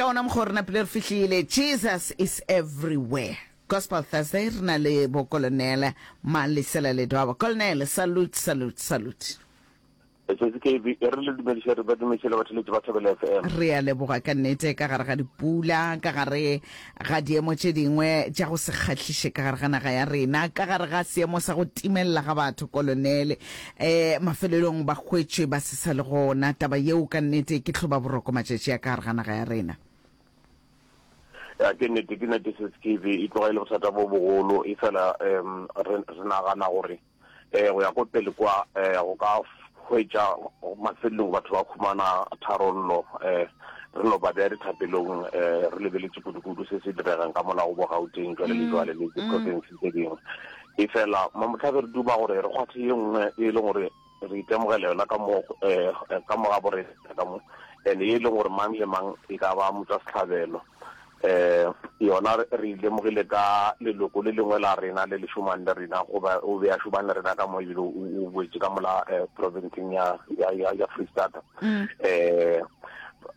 Ke gona mokgwa o rena pele re fihlile. Jesus is everywhere. Gospel Thursday re na le bo Colonel Malesela Ledwaba. Colonel, salute, salute, salute. Sesi KB, e re le dumediše re ba dumešele batheletši ba Thobela FM. Re a leboga ka nnete ka gare ga dipula, ka gare ga diemo tše dingwe tša go se kgahliše ka gare ga naga ya rena, ka gare ga seemo sa go timelela ga batho, Kolonele, E, mafelelong ba hwetšwe ba se sa le gona. Taba yeo ka nnete ke hloba boroko matšatši a ka gare ga naga ya rena. Ya, ke nnete, ke nnete se Skeeve, e tloga e le bothata bo bogolo, efela um re, re nagana gore um go ya ko pele kwa um go ka hwetša mafelelong batho ba khumana tharollo. Um re no ba bea dithapelong um re lebeletse kudu-kudu se se diregang ka molago bo Gauteng jwale le jwale le diprofense tse dingwe. Efela mo mohlabe re duma gore re kgwathe ye nngwe e leng gore re itemogela yona ka mo ka mo ga borena ka mo and e leng gore mang le mang e ka ba motswa setlhabelo um yona re ilemogile ka leloko le lengwe la rena le le šomang le rena goba o be a šomang le rena ka mo ebile o boetse ka mola um provinceng ya ya ya freestata um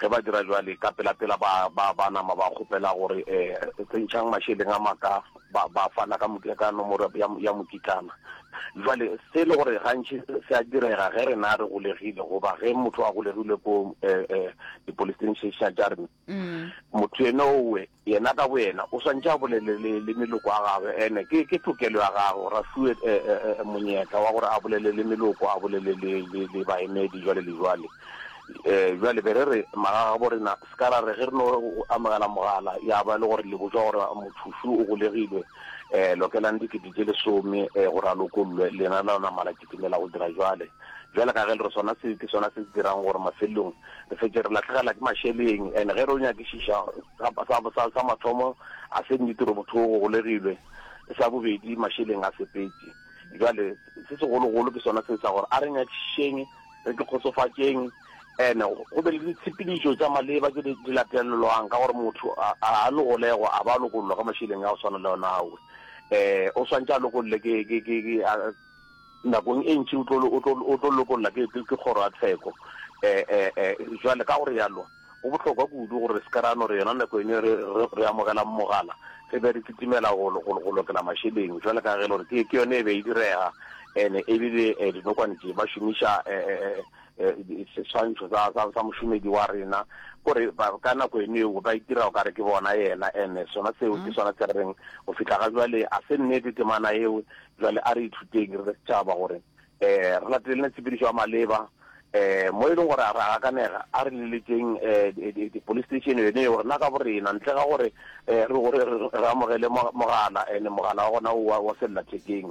Ge ba dira bjale, ka pelapela ba, ba, ba nama ba kgopela gore, Eh, tsentšhang mašeleng a maka. Ba, ba fana ka mo, ka nomoro ya, ya, ya mokitlana. Bjale, se e le gore gantši se a direga ge rena re golegile, goba ge motho a golegilwe ko, eh, eh, di-police station tša rena, motho yenowe, Yena ka boyena o swantše a bolele le, le meloko ya gagwe. Ene ke, ke tokelo ya gagwe gore a fiwe e, e, e, e, monyetla wa gore a bolele le meloko, a bolele le, le, le baemedi, jwale le jwale. E, bjale be re re, magagabo rena, se ka ra re ge re no amogela mogala, ya ba e le gore le botšwa gore mothošu o golegilwe, e, lokelang dikete tše lesome, e, gore a lokollwe, lena la namala. Dumela go dira bjale, bjale ka ge le re sona se ke sona se se dirang gore mafelelong re fetše re lahlegela ke mašeleng. And ge re yo nyakišiša, sa, sa, sa mathomo ga se nnete gore motho o golegilwe, sa bobedi mašeleng a sepetše. Bjale se segologolo ke sona se sa gore a re nyakišišeng, re ke kgotsofatšeng, and go be le ditshepedišo tša maleba tše di, di latelelwang, ka gore motho a, a, a no golegwa a ba a lokollwa ka mašeleng a go swana le ona ao. Um o swantše a lokolle ke, ke, ke, ke a, Nakong e ntši o tlo, o tlo, o tlo lokolla ke, ke, ke kgoro ya tsheko. E, e, e, jwale, ka go realo, go bohlokwa kudu gore re se ke ra no re yona nako yeno re, re, re amogelang mogala, re be re kitimela go, go, go lokela mašeleng, jwale ka ge e le gore ke, ke yona e be e direga, ene e bile e, dinokwane tše ba šomiša e, e, e, seswantšho sa mošomedi wa rena, gore ka nako eno eo ba itira o kare ke bona yena, ene sona seo ke sona se re reng go fihla ga jwale a se nnete temana eo. Jwale a re ithuteng re le setšhaba gore um re latelele tshepedišo ya maleba, um mo e leng gore ra gakanega a re leletšeng um police station yone eo rena ka borena, ntle ga gore re amogele mogala, ene mogala wa gona o wa sellathekeng.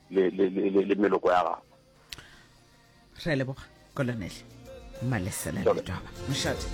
le, le, le, le, le meloko ya gago re leboga kolonele malesela letwaba mošate